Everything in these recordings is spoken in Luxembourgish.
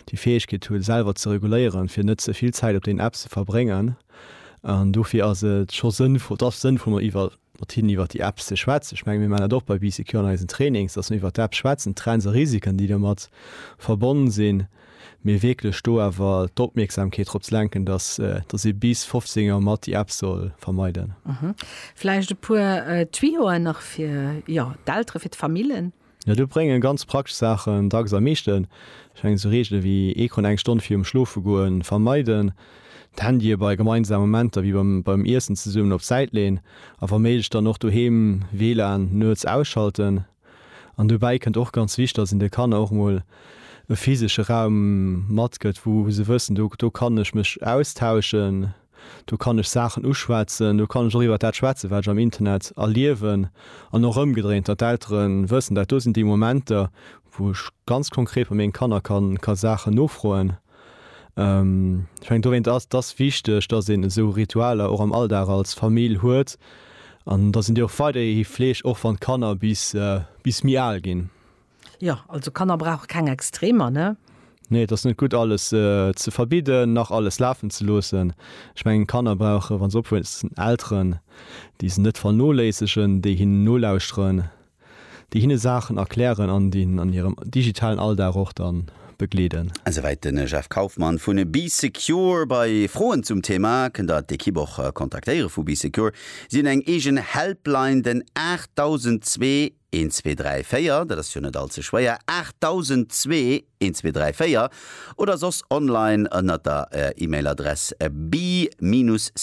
déi Fäegkeet hu selwer ze reguléieren, fir net ze vill Zäit op den Apps ze verbréngen. An dofir ass et scho sënnvoll, et ass sënnvoll mat iwwer, mat hinnen iwwer déi Apps ze schwätzen. Ech menge mir maachen dat och bei BCQ an eisen Trainings, datt mir iwwer d'Apps schwätzen, d'Trends a Risiken déi domat verbonnen sinn, mee wierklech do awer d'Opmierksamkeet drop ze lenken, datt datt ee bis 15 Auer mat déi Apps soll vermeiden. Vläicht e puer Tuyauxen nach fir, jo, d'Elteren, fir d'Famillen? Jo, do bréngen ganz praktesch Saachen dacks am meeschten. Ech mengen esou Reegele wéi Ecran eng Stonn virum Schlofegoen vermeiden, d'Handye bei gemeinsame Momenter wéi beim Iessen zesummen op d'Säit leen a wa méiglech dann och doheem WLAN nuets ausschalten. An dobäi kënnt och ganz wichteg, dass een de Kanner och emol e physesche Raum matgëtt, wou se wëssen, do kann ech mech austauschen. Do kann ech Saachen uschwätzen, do kann ech och iwwert dat schwätzen, wat ech am Internet erliewen. An och ëmgedréint, datt d'Eltere wëssen, dat do sinn déi Momenter, wou ech ganz konkret bei menge Kanner ka Saachen nofroen. Ech mengen, dowéint ass et wichteg, datt een esou Ritualer och am Alldag als Famill huet an datt een déi och weiderhi fleegt, och wann d'Kanner bis méi al ginn. Jo, also Kanner brauche keng Extremer, ne? Nee, et ass net gutt, alles ze verbidden, nach alles lafen ze loossen. Ech mengen, Kanner brauchen, wa se opwuessen, Elteren, déi se net vernoléissegen, déi hinnen nolauschteren, déi hinne Saachen erklären an déi hinnen an hirem digitalen Alldag och da begleeden. Esouwäit de Jeff Kaufmann vun Bee Secure. Bei Froen zum Thema kënnt der d'Ekipp och kontaktéiere vu Bee Secure. Si hunn eng eegen Helpline, den 8002. Eent, zwee, dräi, véier, dat ass jo net all ze schwéier, 8002, eent, zwee, dräi, véier, oder soss online ënnert der E-Mail-Adress be-secure.lu.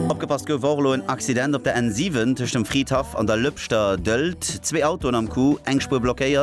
Opgepasst, Gouf och elo en Accident op der N7 tëscht dem Fridhaff an der Lëpschter Dëlt, zwee Autoen am Coup, eng Spuer blockéiert.